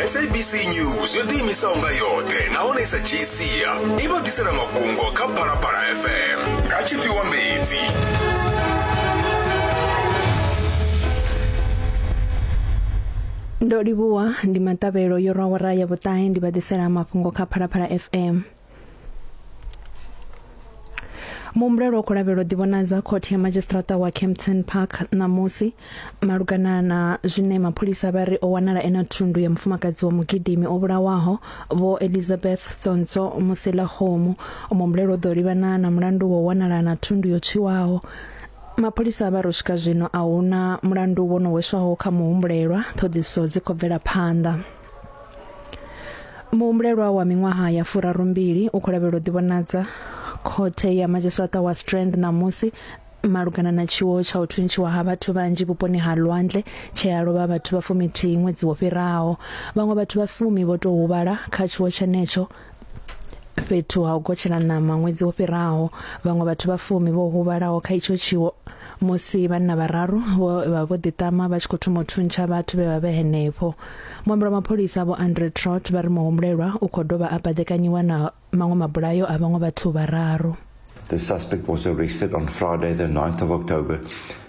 sabc news yo ḓiimisaho nga yoṱhe nahone i sa dzhii sia i vha ḓisela mafhungo kha phalaphala fm nga tshifhiwa mbedzi ndo livhuwa ndi maṱavhelo yo rwa wara ya vhuṱahe ndi vha ḓisela mafhungo kha phalaphala fm muhumbulelo wo khou lavhelwa ḓivhonadza khothe ya madzhisiṱiraṱa wa campton park ṋamusi malugana na zwine mapholisa vha ri o wanala ena thundu ya mufumakadzi wa mugidimi o vhulawaho vho elizabeth tsonso musela khomu muhumbulelo ḓo livhana na mulandu wa wanala na thundu yo tshiwaho mapholisa vha ro swika zwino a huna mulandu wo no weswaho kha muhumbulelwa ṱhoḓiso dzi khou bvela phanḓa muhumbulelwa wa miṅwaha ya furarumbili u khou lavhelwa u ḓivhonadza khothe ya madzhisiṱa wa strand ṋamusi malugana na tshiwo tsha u thuntshiwa ha vhathu vhanzhi vhuponi ha lwandle tshe a lovha vhathu vha fumithihi ṅwedzi wo fhiraho vhaṅwe vhathu vha fumi vho tou huvhala kha tshiwo tshenetsho fhethu ha u gotshela ṋama ṅwedzi wo fhiraho vhaṅwe vhathu vha fumi vho huvhalaho kha itsho tshiwo musi vhanna vhararu vho vha vho ḓiṱama vha tshi khou thoma u thuntsha vhathu vhe vha vhe henefho muambelo wa mapholisa vho Andre Trot vha ri muhumbulelwa u khou dovha a baḓekanyiwa na maṅwe mabulayo a vhaṅwe vhathu vhararu The suspect was arrested on Friday the 9th of October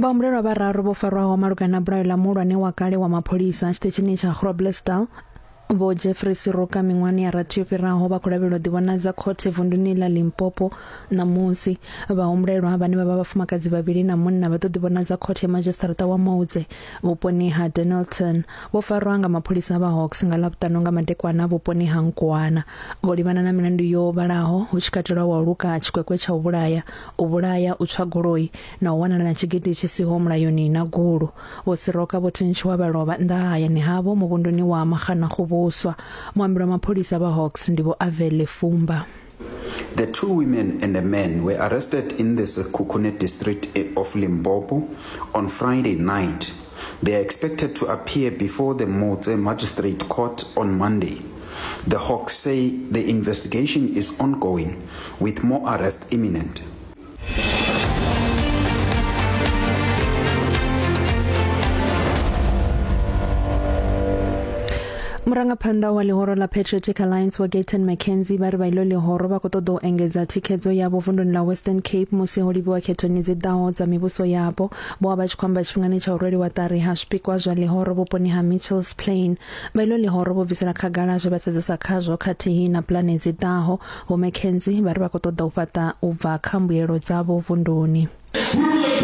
vhahumbulelwa vhararu vho farwaho malugana na bulayo ḽa muhulwane wa kale wa mapholisa tshiṱitshini tsha groblersdal vho jeffrey siroka miṅwahani ya rathi yo fhiraho vha khou lavhelelwa ḓivhonadza khothe vunduni ḽa limpopo ṋamusi vhahumbulelwa vhane vha vha vhafumakadzi vhavhili na munna vha ḓo ḓivhonadza khothe ya madzhisiṱaraṱa wa moudze vhuponi ha denelton vho farwa nga mapholisa vha hawks nga ḽavhuṱanu nga madekwana vhuponi ha nkwana vho livhana na milandu yo vhalaho hu tshi katelwa wa luka tshikwekwe tsha u vhulaya u vhulaya u tswa goloi na u wanala na tshigidi tshi siho mulayoni na gulu vho siroka vho thuntshiwa vha lovha nnḓa ha hayani havho muvhunduni wa maxana khuvhuswa muambi wa mapholisa vha hawks ndi vho avele fumba The two women and a man were arrested in the Sekhukhune district of Limpopo on Friday night. They are expected to appear before the Motse Magistrate Court on Monday. The Hawks say the investigation is ongoing with more arrests imminent. murangaphanḓa wa ḽihoro ḽa patriotic alliance wa gaton mckenzie vha ri vha iḽo ḽihoro vha khou ṱoḓa u engedza thikhedzo yavho vunduni ḽa western cape musi ho livhiwa khethoni dzi ḓaho dza mivhuso yapo vho vha vha tshi khou amba tshifhingani tsha u rweliwa ṱari ha zwipikwa zwa ḽihoro vhuponi ha mitchells plain Vha ilo ḽihoro vho bvisela khagala zwe vha sedzesa khazwo khathihi na pulane dzi ḓaho. Vho McKenzie vha ri vha khou ṱoḓa u fhaṱa u bva kha mbuelo dzavho vunduni.